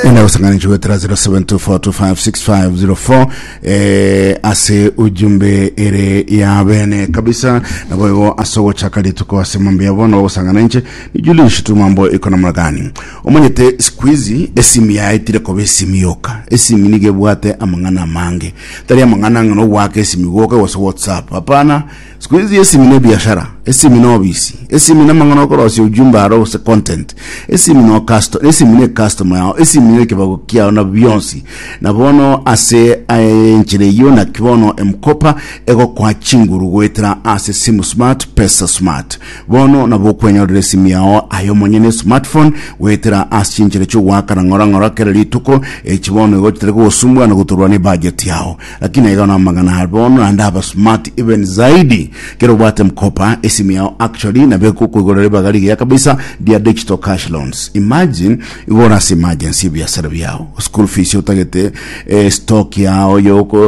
Nenda kusanganishwa 0724256504 eh, ase ujumbe ere ya bene kabisa nabo igo ase ogochaka rituko ase mambo yabo nabo gosangana inche ni Julius tu mambo iko namna gani omonyete siku hizi esimi yaetire koba esimi yoka esimi nigebwate amang'ana amange tari amang'ana ng'ana ogwaka esimi goka gose whatsapp hapana Siku ici esimi ne biashara, esimi ne obisi, esimi ne mang'ana okorosia ujumbe aro gose content, esimi no custo, esimi ne customer yao, esimi ne kibago kiao na bionsi. Na bono ase aye enchera eyio naki bono M-Kopa egokoa chinguru goetera ase simu smart, pesa smart. Bono nabo okwenyorera esimi yao aye omonyene, smartphone, goetera ase chinchera chiogoakana ng'ora ng'ora kera rituko, echi bono igo chitari kogosumbuana gotorwa ne budget yao. Lakini aiga namang'ana are bono naende aba smart even zaidi kero obwate mkopa esimu yao actually nabo ekokoigorera ribaga rigiya kabisa ria digital cash loans imagine igora ase emergency ebiasara biao school fees otagete eh, stock yao yoko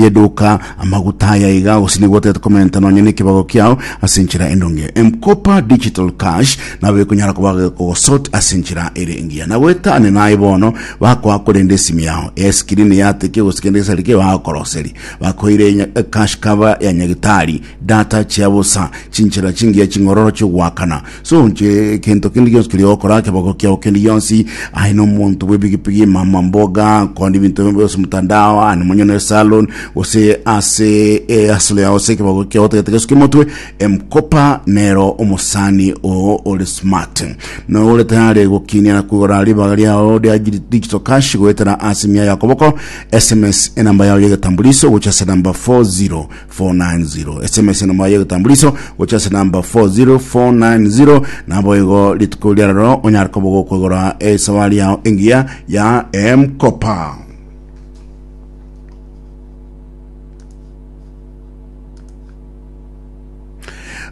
yeduka amaguta aya iga gose nigo otagete komenta nonya nekibago kiao ase enchera endonge mkopa digital cash nabo ekonyara koba kogosort ase enchera ere engiya nagoetane naye bono Bakoa korende esimi yao y'eskirini yateke gose kende gesa rike bagokoroseria. Bakoire enya cash cover ya nyagitari, data chia bosa, chinchera chingiya ching'ororo chi'ogoakana. So nche kento kende gionsi keria ogokora, keboko kiao kende gionsi, aye nomonto bw'epigipigi, mama mboga, konde ebinto bionsi gose mtandao, aye nomonyene salon, gose ase ehasolo yao gose ekeboko kiao otagete gesuke motwe, Emkopa nero omosani oo ore smart na ore tayari gokinia na koigora ribaga riao ria digital cash goetera ase emia ya koboko sms enamba yao y'egetambuliso gocha ase namba 40490 sms enamba yao y'egetambuliso gocha ase namba 40490 nabo igo rituko riarero onyare koba gokoigora esabari yao engiya ya emkopa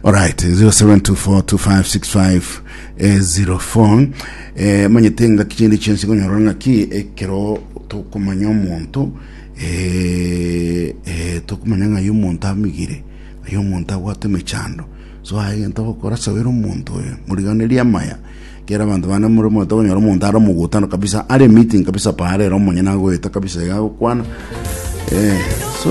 Alright, 0724256504 eh, 04. Eh, manyete ngaki chindi chensi konyora ngaki ekero tokomanya omonto eh, eh, tokomanya ng'ai omonto amigire ng'ai omonto abwate emechando so aye gento gokora sabera omonto oyo moriganerie amaya kera abanto bane more moete konyora omonto are omogutano kabisa are meeting kabisa paarera omonyene agoeta kabisa iga agokwana eh, so